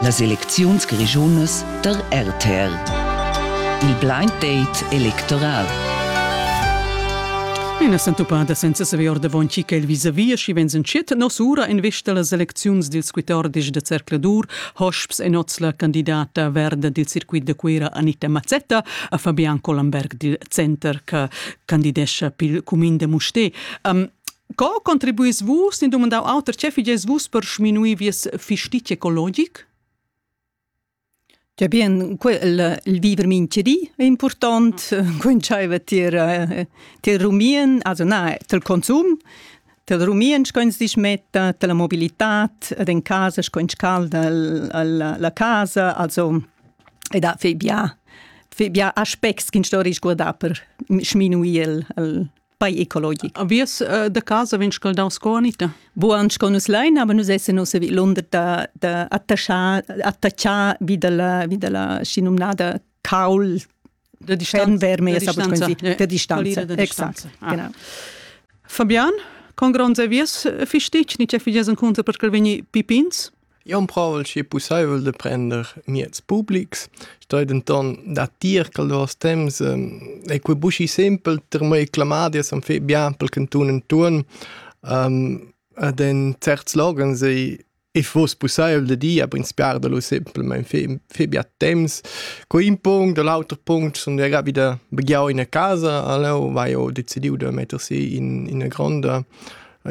Las elecziuns grischunas der RTR. Il blind date electoral. Ina sentupada senza saver ordavon chi che il vis-a-vis, schi vens entschet nos ura en vista las elecziuns dils 14 de Cercladur, hosps en oz la candidata verda dil circuit de Cuera Anita Mazzetta a Fabian Collenberg dil Center che candidescha pil cumin de Mustè. Um, Co contribuis vus, in dumandau auter, ce figies vus per sminuir vies fistit ecologic? Ja bien, quel, il viver mintgedi è important, coincide tier, tier rumien, also na, tel consum, tel rumien scoins dich metta, tel mobilitat, ed in casa scoins calda la, la casa, also, e da fei bia, fei bia aspects ch'in storis guardar per sminuir il, il pai ecologic. Avies uh, da casa vegn scaldau sco Anita. Buan sco nus lein, aber nus essen ossa vi Londra da, da attachar, attachar vi dalla, vi dalla schinumnada caul de distanza, de distanza, de, de distanza. de Exact. Ah. Genau. Fabian, con gronds avies fistici, ni ce figesen conta per quel veni pipins? Eu emprovel schi pussaivel da prender mieds publics, stoi denton datir ch'el duos temps ei quei buschi simpel per mei clamadias am fet bien pel cantun intuorn ed in certs loghens ei ei fuoss pussaivel da dir, aber inspirar da lu simplamaing fer fer bia temps. Quei ün punct, da l'auter punct sun jeu gia vida begiau ina casa a Leu, vai ho decidiu da metter si in ina gronda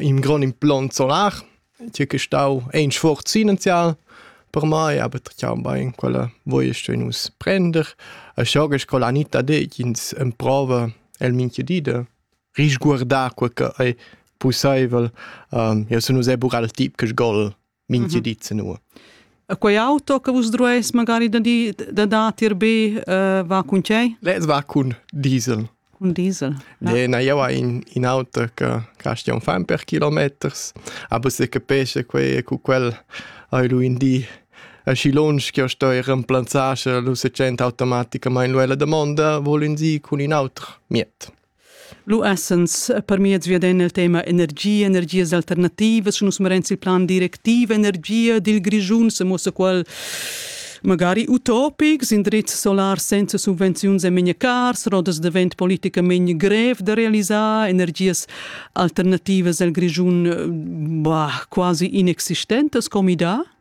in grond implant solar tgei che stau ein sforzinenzial per mai, aber tgau bein quella voiest nus prender. E scho che sco la Anita detg ins emprova el minche di de risguardar quel che ei pusseivel. Um, io sun uss ebbur al tip che sgol minche mhm. di ze nu. E quei auto che vus drueis magari da di da da tier be uh, va cun tgei? Les va cun diesel. Cun diesel? No? Nee, na, io ha in, in auto che costa un fan per kilometers, aber se capisce quei cu quel hai lu in di asci lunsch che io sto ir remplazzasce lu se gent automaticamente nuela domanda, vol in si cun in auto miet. Lu essens per miez via den il tema energia, energias alternativas, nus merenz il plan directiv energia dil Grischun, se mossa qual Magari utopics, indrizs solars senza subvenziuns e memia cars, rodas da vent politicament grev da realisar, energias alternativas al Grischun eh, bah, quasi inexistentas come idea?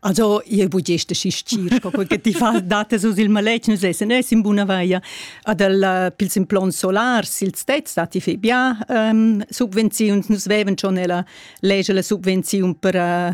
Also, io bugește și știr că ti faci date sus il maletg, nu se, ne in buna vaia. Adel pil sin plon solar, sil stet stati fe bia um, subvenziuns, nus veven schon nella lege la subvenziun per uh,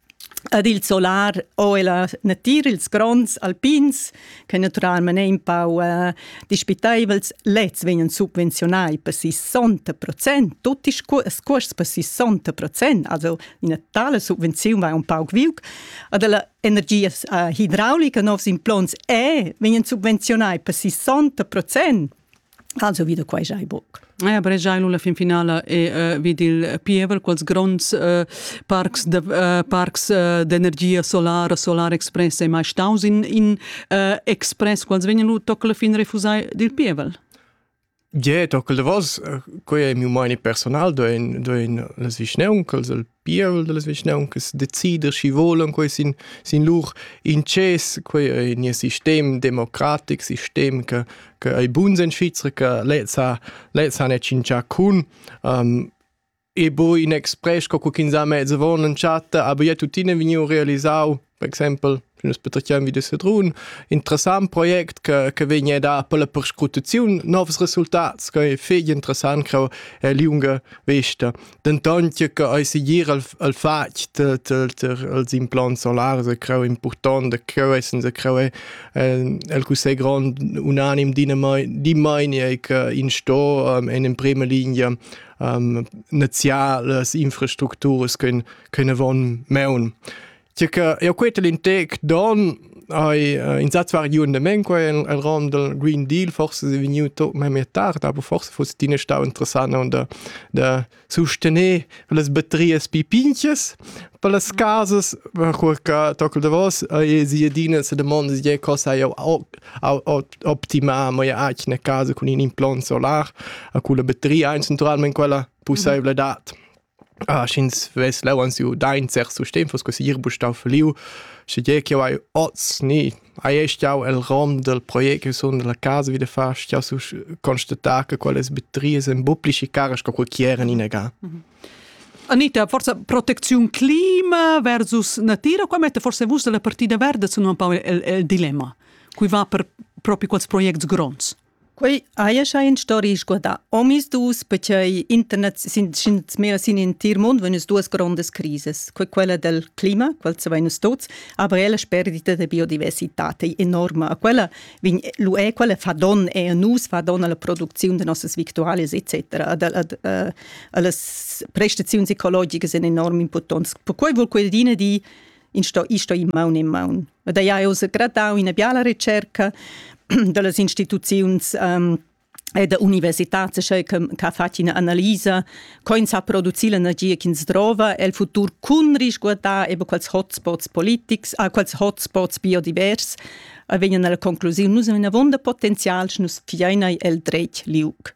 Ad il solar ho ella natir ils gronds alpins che naturalmein ein pau eh, dispiteivels, lezs vegnan subvenziunai per 60 procent, tutti ils cuors per 60 procent, also ina tale subvenziun va un pauc viuc. Ad la energia eh, hidraulica novs implants e vegnan subvenziunai per 60 procent. Also wieder quai giai buc. Ja, bregiai lu la fin finala e uh, vid il pievel quels gronds uh, parcs de, uh, parcs uh, d'energia solara, solar express ei mai staus in, in uh, express quals vegnan lu toc la fin refusai dil pievel. Je, toc il davos, quei ei miu meini personal, do in, do in las vischneun, quels pievel da las vischnauncas decider schi volan quei sin sin lur inces quei ei nia sistem democratic sistem che che ei buns en Svizra che lez ha lez ha ne cincia cun um, e bo in express co kin sa mezzo von in chatta aber ja tuttina vegniu realisau per exempel nus patratgiam vi da Sedrun, interessant project che, che vegn a dar per la perscrutaziun novs resultats, che è fetg interessant che è lunga vesta. Dentant che ei segir al, al fatg dels implants solars è creu important, e creu è senza creu è il cussegl grond unanim di mai che in sto um, in prima linea um, naziales infrastructuras können, können von meun. Tge che jau queta l'intec don hai uh, insatge variun da men qua en rom dal Green Deal forse è vegniu to memia tard aber forse fosse tina stau interessant da da sustener las batteries pipinches per las casas per che tockel da vos e si adina se domanda je cosa jau optimar mo ja eine casa con in implant solar a cui la batteria eins naturalmente quella possibile dat Ah, sch'ins vess leu ans giu da in cert sustegn, fuss quei segir buca stau falliu. Schegie ch'jeu hai oz ni hai stiau el rom del project che sun dalla casa wieder fa, stiau constatar che quellas batteries ein buca pli schi caras co quei chi eran inaga. Anita, forza proteziun clima versus natira, qua mette forse vus dalla partida verda sun un po il, il, il dilemma. Cui va per propi quels projects gronds? Quei haja schai in storia sguardà. Omis dus, perché internet sin mehr sin in tir mund vegn duas grondas crises. Quei quella del clima, quel se vegn tuts, aber ella sperdita de biodiversità è enorma. A quella vin lu è quella fa don è a nus, fa don alla produzione de nostas victualias etc. Ad alle prestazioni ecologiche sind enorm importants. Per quei vol quel dine di in sto isto in maun in maun. ed ei ha uss gradau ina biala ricerca dallas instituziuns um, e da universitats che ha fatg ina analisa co ins ha produci l'energia ch'ins drova el futur cun risguardar eben quals hotspots politics, ah, quals hotspots biodivers e vegnan alla conclusiun nus avon da potenzial nus fiein el dretg liug.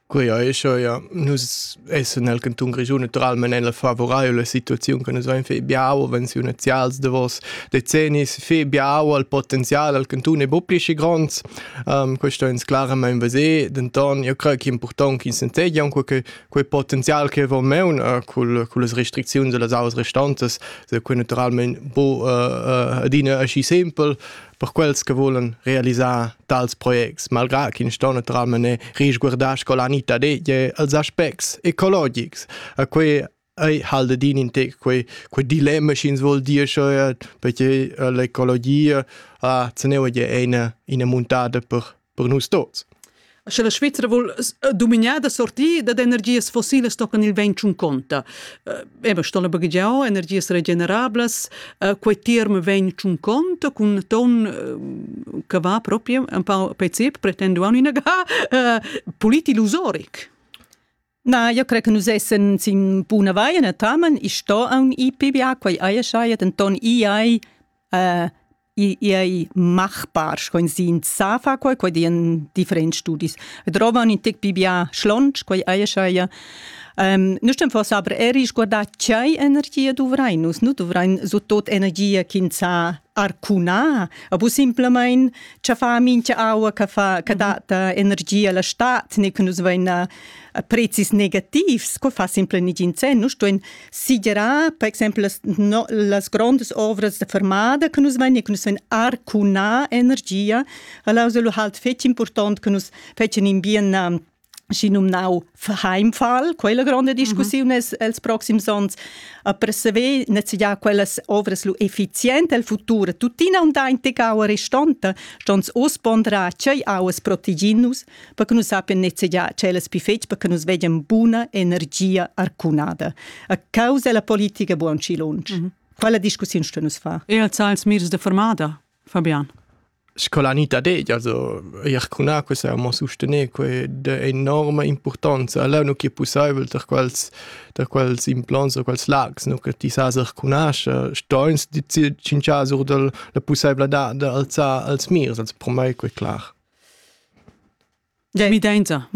Quei ei scho ja nus essen nel canton Grischun naturalmein nella favorabile situaziun che nus vein fei biau venziunazials davos decennis fei biau al potenzial al canton e bo pli schi gronds um, questo ins claramain veser denton io crei che important ch'ins entegi aunque che quei potenzial che von meun uh, cul cul las restricziuns e las auas restantas se quei naturalmein bo uh, uh, adina aschi simpel per quels che volen realisar tals projects, malgrà ch'ins sto naturalmente risguardar sco la nita deglie als aspects ecologics. A quei ei halde din in te quei, quei dilemma sch'ins vuol dir schon perché l'ecologia ha ceneu è eine, eine muntata per per nus tots. Sche la Svizra vul eh, dominar da sortir da energias fossilas tocan il vent un conta. Ema sto la baghegiau energias regenerablas, quei term vegn un conta cun ton che va proprio un po pezip pretendu an ina ga polit illusoric. Na, io cre che nus essen sin buna vaia natamen. I sto aun i PBA, quai eia schaia, denton i ei uh, i, i ei machbar, scoin sin sa fa quai, quai dien differents studis. Drovan in tec PBA schlonch, quai eia schaia. Um, nu stem forse aber er guardar chai energia duvrai nus, nu duvrain so tot energia ch'in sa arcuna a bu simplemein cha fa mincha aua che fa che data energia la stat ne che nus vein a, a prezis negativs co fa simple nigin sen nus stuein sigerar per exempel las, no, las grandes ovras de fermada che nus vein ne che nus vein arcuna energia alla lu halt fetg important che nus fetgen in bien schinumnau Heimfall, quella gronda discussiun mm -hmm. els proxims onns, per saver nezegiar quellas ovras lu effizient el futur, tuttina unda in tegaua restanta, stons us pondrar tgei auas proteginus, per che nus sapien nezegiar cellas pi fetg, per che nus vegien buna energia arcunada. A causa della politica buon ci lunch. Mm -hmm. Quella discussiun sto nus far. E als als mirs de formada, Fabian? Sco la Anita detg, also eir cun acqua saimmo sustener que d'he enorma importanza. Leu nu chi è pussaivel per quels per quels implants o quels lags, nu che ti sas recunascher, stoins ti tschinchas our dal la pussaivladad d'alzar els mirs, also per mai que clar. Mi dainta.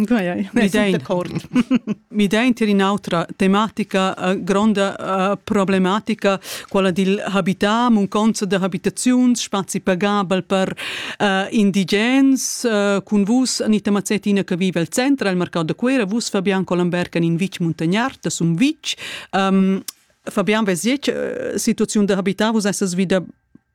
Mi dainta in'autra tematica uh, gronda uh, problematica, quella dil habitar, munconza da habitaziuns, spazi pagabel per uh, indigens. Uh, cun vus, Anita Mazzettina, che vive al centro, al mercato da Cuera, vus Fabian Colomberg in vic muntagnard, das un vic. Um, Fabian, vesiec, situaziun da habitar, vus essas vida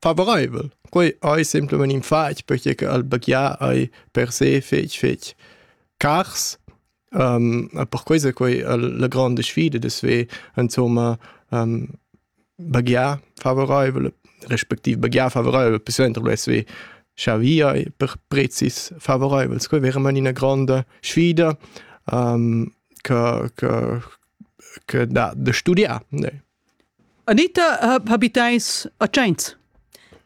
favoraivel. Quei ei semplamein in fatg perche che al baghiar ei per se fetg fetg cars. Um, per questo è quei la grande sfida de sve insomma um, baghiar favoraivel respektiv baghiar favoraivel per suenter lo sve scha per prezis favoraivels. Quei è veramente una grande sfida um, che, che, che da, da studiar. Ne. Anita ha habitais a Tschains?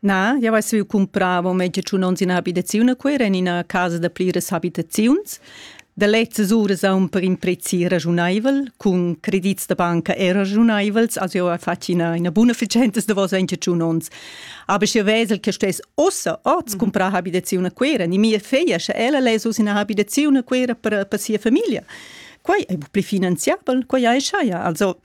Na, jau hai stuì cumprar mo meztgiun onns ina abitaziun a Cuira en ina casa da pliras abitaziuns. Da lezzas uras aun per in prezi ragiunaivel, cun credits da banca er ragiunaivels, also jau hai fatg ina, ina buna efficienza da vos meztgiun onns. Aber ich vesel che stess ossa oz cumprar abitaziun a Cuira. E mia figlia, sche ella less uss ina abitaziun a Cuira per, per sia famiglia. Quai è pli finanziabel, quai hai schaja. Also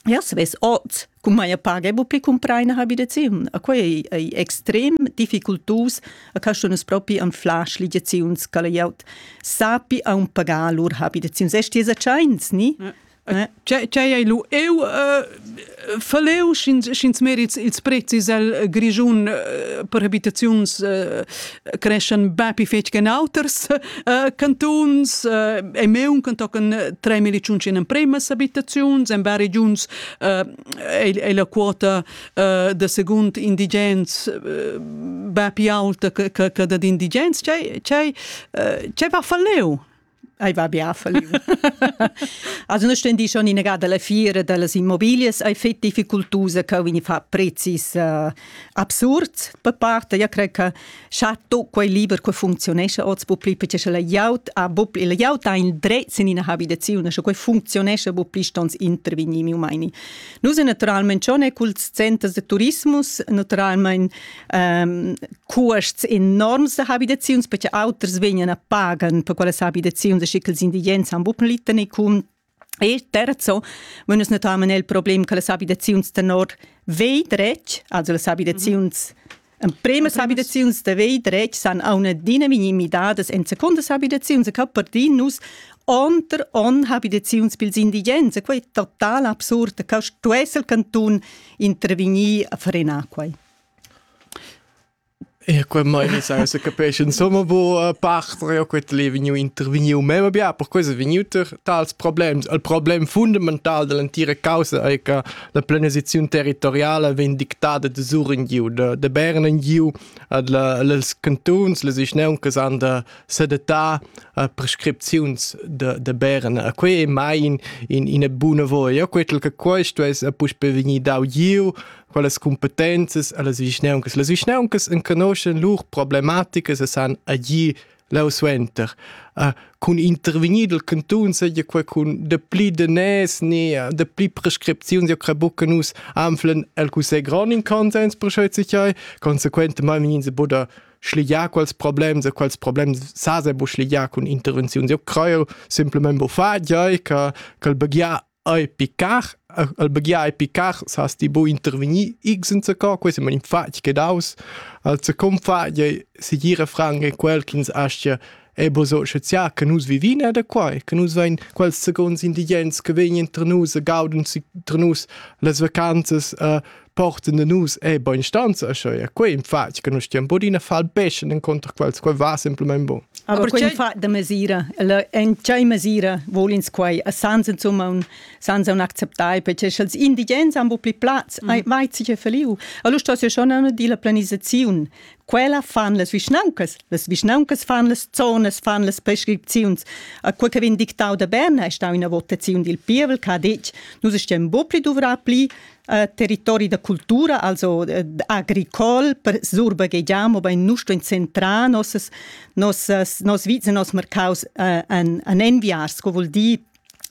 Ja savess oz cum maja paga bu pi cumpraina habitaziun. A quai ei, ei extrem difficultus a caschunas propi an flash ligiaziuns ca la glieud sapi aun pagar lur habitaziuns. Es ti satschains, ni? Ja. Eh? Tgei ei lu eu uh, faleu sch'ins sch'ins merit ils prezis el Grischun uh, per habitaziuns uh, creschan bapi fetg che auters uh, cantuns uh, e meun can tocan tre milizuns in empremas abitaziuns en vari giuns uh, è la quota uh, da secund indigens uh, bapi alta che da d'indigens c'è c'è c'è va falleu Ei va bia falliu. also non stendi schon in gada la fiera dallas immobilias ei fet difficultusa che vegni fa prezis uh, absurd per parte ja cre che chato quei liber che funzionesce oz bu pli perché la iaut a bu pli la iaut ha in dretz in ina habitazione sche quei funzionesce bu pli stons intervegni mi umani nus naturalmente schon e cul centers de turismus naturalmente cuosts enorms da habitaziuns perché auters vegnan a pagan per quelle habitaziuns schi che els indigens han bupen liten e cun E terzo, wenn uns natürlich il Problem che le abitazioni tenor vei dretg, also le abitazioni En primas habitaziuns de vei dretg san a una dina minimidadas en secondas habitaziuns che per din nus onter on habitaziuns pils indigens e quei total absurd che stu esser canton intervenir a frenar quei. E quei meini sai se capisci insomma bu parter io quet le vegniu intervegniu meva bia per questo vegniuter tals problems il problem fundamental dell'entira causa ei che la planisazione territoriale vegn dictada da Suren giu da, da Bernen giu ad la, les cantuns les vischneuncas han da sedatar uh, prescripziuns de, de Bern e quei ei mai in, in, in buna voia quet che questo es a puspe vegnir dau giu quellas competenzas allas vischnauncas. Las vischnauncas enconoschen lur problematicas e san agir lausuenter. Uh, cun intervenir del cantun seja quei cun de pli danès ni uh, de pli prescripziuns ja crebucca nus anflen el Cussegl grond in consens per scheu sichai consequentemente vegin se buda schligiar quels problems e quels problems sa se bu schligiar cun intervenziuns. Jo creu simplement bu fa giai che che begia Ei picar, al baghiar ei picar, sas ti bu intervegnir x enzaco, quei sema in fatg che daus. Al zacon fatg ei segir a franc è quel ch'ins aschia è bo so schaziar che nus vivin e da quai, che nus vein quels seconds indigens che vegnan tra nus e gaudun si tra nus las vacanzas uh, porten de nus e bonstanza scho e quei in fatg che nus stiam bodina fal beschen inconter quels quei va simplement bon aber quei fa de mesira en tgei mesira volins quei a sans insomma un sans un acceptai perché sch'els indigens han bu pli platz mm. vai sich feliu allora sto ja schon eine della planisazione quella fan les vischnauncas les vischnauncas fan les zonas fan les prescripziuns a quel che vin dictau da Berna è stau una votazione dil pievel che ha detg nus stiam bu pli duvrar pli territori da cultura, also agricol, per surbaghegiamo ben nusto in centrà nos nos nos vizes nos mercaus an an enviars, sco vuol dir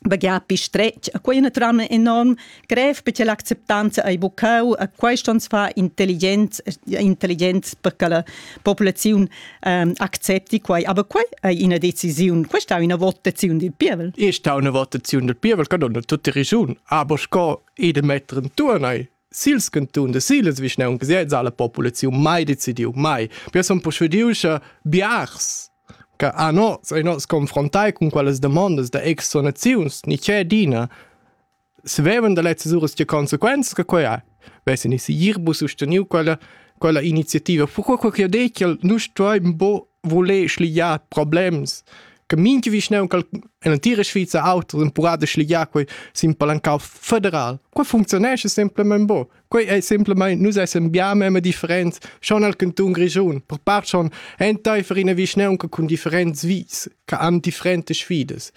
baghiar pi stretg. A quei è naturalmente enorm grev perché l'acceptanza ai bucau a questo uns fa intelligenz intelligenz perché la popolazione ähm, accepti quei. Aber quei è una decisione, questa è una votazione del pievel. È una votazione del pievel, che non è tutta ragione, aber sco e de metter intuorn ei sils cantun de siles vischnaunc siez alla populaziun mai decidiu mai per son procediu sche biars che a nos ei nos confrontai cun quelles demandas da exonaziuns ni c'è dina sveven da lezzes uras tge consequenzas che quei ha vessen i si irbus susteniu quella quella iniziativa fu quel che ha detto nus stueim bo voler schliar problems che minche vischnaun cal en l'antira Sviza auto empurà da schliar quei sin palancau federal. Quei funzionesce semplament bo. Quei è semplament nus essem gia memme different schon al canton Grischun, per part schon enteifer ina vischnaunca cun differents vis, che han differentes sfidas.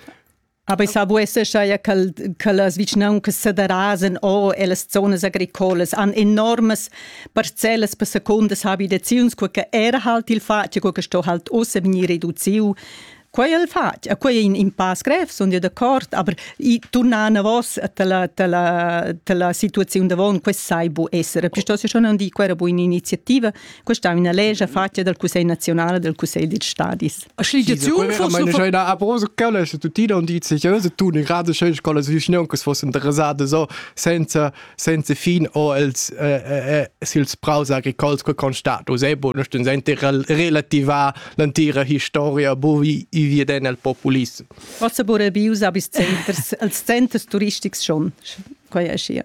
Aber ich sage, es ja che, che las vicinanzas sederrasen o e las zonas agricolas han enormes parcellas per secundas habitaziuns, che era halt il fatg, che sto halt ossa vegnir reduziu Quei è il fatg, e quei è in impasse grev, sono io d'accordo, aber i tornano vos dalla, dalla, dalla situazione davon, questo sai bu essere. Piuttosto schon non dico, era buona iniziativa, Questa è una legge fatta dal Cussegl nazionale del Cussegl dei Stadis. Schligiaziun Abros Calles tuttina und die seriöse tun in gerade schön Scole Schnee que fosse interessate so senza senza fin o els sils praus agricols que constat Usebo nicht in sente relativa l'antira historia bo vi viden el populism. Was aber bei uns bis Centers als Centers turistics schon quai è schier.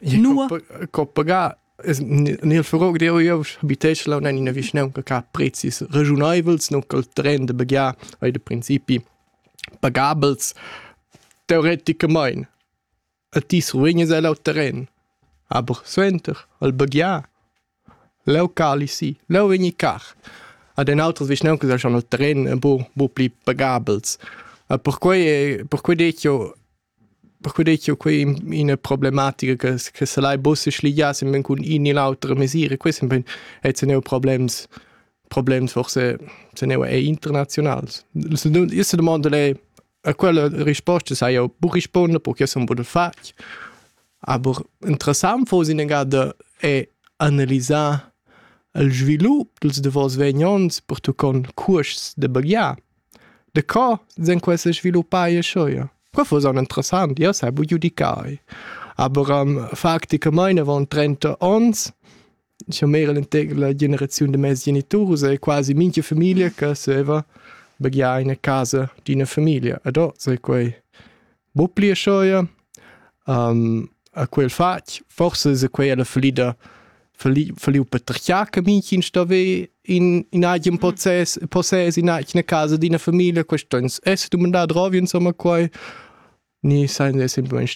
Nua? Co pagar Nel furog deo eu habitesce là in ina vischnaunca che ha prezis ragiuneivels, non col tren da baghiar ei da principi pagabels teoreticamein. A ti survegnes el al terren, aber suenter al baghiar leu cali si, leu vegni car. Ad en outras vischnauncas ei schon il terren bu bu pli pagabels. E perquei perquei detto Perquei ei quei ina problematica che che selai buca sligiar sembein cun in ni l'autra mesira. Quei sembein ei teneu problems problems forse teneu ei internazionals. Io sedemondel ei a quella risposta sai jeu buc rispunder perché sun buca fatg. Aber interessant fos in egada è analisar il svilup dils davos vegn onns pertuccont cuosts da baghiar. De co sen queste sviluppai e schoia? Quafo son interessant, io sai bu giudicai. Aber um, facticamain avant 30 ons, scha m'era l'integr la generaziun de mes geniturus, è quasi minchia familia che saveva begiar in a casa d'ina familia. Ed o sai quei bu pli schoia um, a quel fatg forse se quei la falida faliu patriarca Mädchen stave in in eigem Prozess Prozess in eigene Casa d'ina Familie questens es du mandat drovi insomma quai ni sein es in buon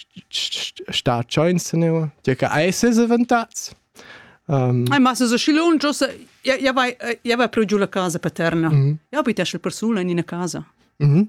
sta chance ne ja che eses avantats Um, Ai, ma se schilun giusta ja vai ja vai pro giù la casa paterna. Mm -hmm. Ja bit esce persona in una casa. Mhm. Mm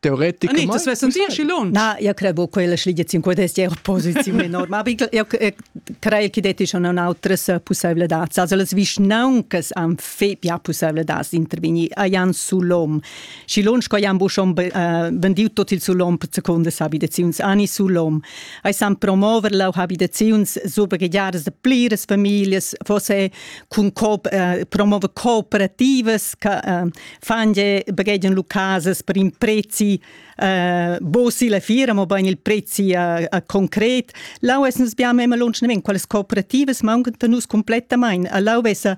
teoreticamente ah, ne, senti aschi lunsch na io credo quella schligia 50 euro posizione enorme aber io credo che deti schon un altres possibilidades also las vischnauncas han fe ja possibilidades intervenir ajan sulom și lunch coi han schon vendiu tot il sulom per secondas habitaziuns ani sulom ai san promover la habitaziuns super gagiares de pliras familias fosse cun co promover cooperativas che fange baghegian lu casas per in prezi uh, bosi la fira mo bein il prezi uh, uh, concret lau es nus biam immer lunschnemen quelles cooperativas mauncan nus complettamain lau vesa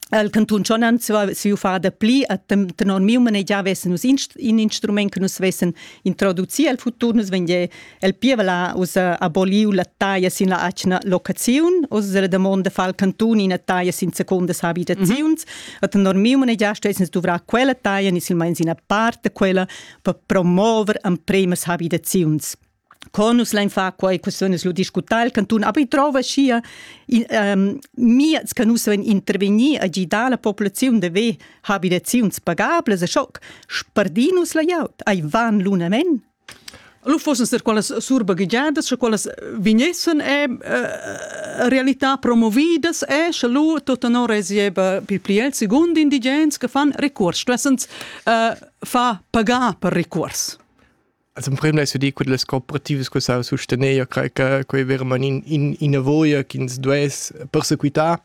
al cantun Schonan siu fada pli a tenor miu manegiar vessen nus in instrument che nus vessen introducir al futur nus vende El pievel ha ussa aboliu la taglia sin la atgna locaziun. Ussa la damonda fa il cantun ina taglia sin secondas abitaziuns. Mm -hmm. Et normiu manegiaste es dovrà quella taglia ni silmeins ina part de quella per promover ampremas abitaziuns. Conus lein fa quei questiones lu discutar il cantun, aber ich trova schia ähm, miez che nus vein intervenir a gidar la populaziun de ve habitaziuns pagables a schoc, spardinus la jaut, ai van lunamen Lu fussen star quellas surbaghegiadas, sche quellas vegnessen e eh, realità promovidas e sche lu tut tenor regieva pi pli el secund indigens che fan recurs, stuessens eh, far pagar per recurs. Also im Prim è di che le cooperative che sa sostenere cre che quei veramente in in avoia che ins duess persequitare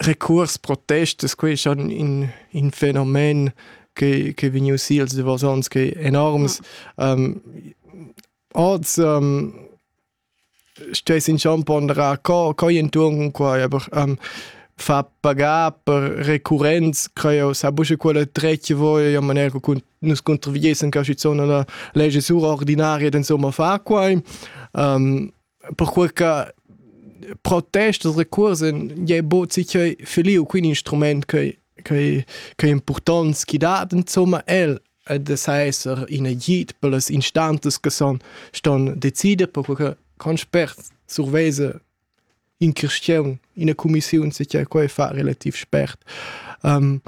recuors protestas quei schon in in fenomen che che vegniu sils davos ons che enorms um, oz um, stess in schon ponderar co co entuorn quai aber um, fa pagar per recurrenz creo sa busche quella trecce voi in maniera con nus contriviesen che zona la legge sur ordinaria insomma fa quai um, perquei che protest e recuors ei bod sinquei feliu quin instrument ch'ei ch'ei ch'ei impurtont schi dat insomma el ed es a esser in agid per las instanzas che son ston decider perquei che con spert survesa in cristian ina cumissiun sinquei quei fa relativ spert um,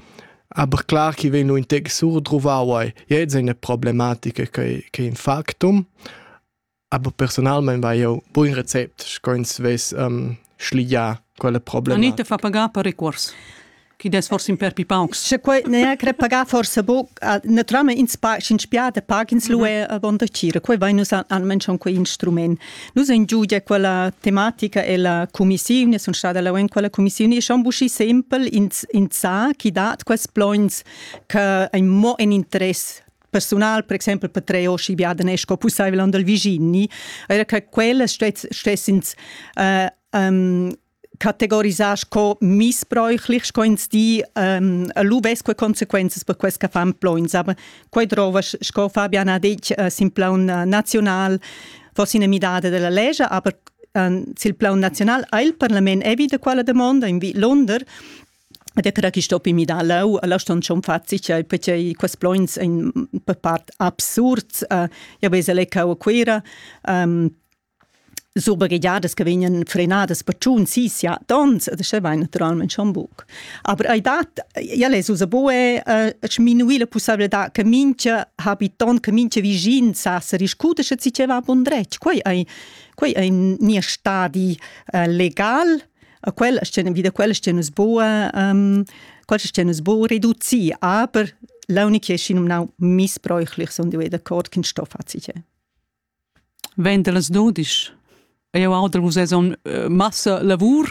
aber clar chi vegn in tec surdruvau ei jetzt eine problematica che che in factum Aber personalmein vai jeu buin recept, sco ins vess um, schligià quella problema. Anita fa pagar per recuors chi des forse in per paucs. Sche quei ne cre pagar forse bo naturalmente ins pa in spiate pagins lu è vonda cira quei vai nus almen schon quei instrument. Nus in giudia quella tematica e la commissione sono stata la in quella commissione e schon buschi sempre ins ins sa chi dat quels plons che ein mo in interesse personal, per exempel per tre o schi biaden è sco pussaivel on dal viginni, era che quelle stessens uh, um, categorisar sco missbräuchlich, sco ins di um, lu vesque consequences per quest che fan plons, aber quei drova, sco Fabian ha detto, uh, sin plan uh, nacional fosse una midada della legge, aber uh, sul plan nazionale ha il Parlament evita quella domanda in Lunder Ed era chi sto pi midar leu, la ston schon fazi, cioè perchei quels plogns ein per part absurds. Uh, io vesa lecau a Cuera, um, super guidadas che vegnan frenadas per tschun, sì, sia tons, e das vai naturalmente schon buc. Aber ei dat, ja les usa bue, uh, sminuir la possibilità che mincha habitant, che mincha visin sa se riscuda se ci va bun dretg. Quei ei, quei ei nia stadi uh, legal, a quella scena vi da quella scena nus boa um, quella scena nus boa reduci aber l'unica che schien um nau missbräuchlich son die da cort kin stoff hat sich wenn du das dodisch eu auter vus es on eh, massa lavur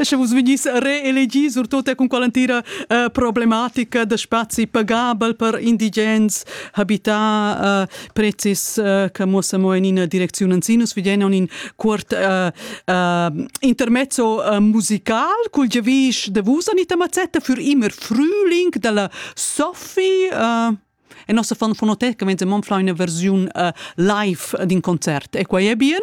sche vus vegnis reelegi surtut con quell'antira uh, problematica da spazi pagabel per indigens habità uh, prezis uh, che muossa mo in ina direczione anzi nus vediamo un in cuort uh, uh, intermezzo uh, musical col gevish de vus anita mazzetta für immer Frühling della Sophie uh, e nossa fan fonoteca venze mon fra una versione uh, live d'un concert e qua è bien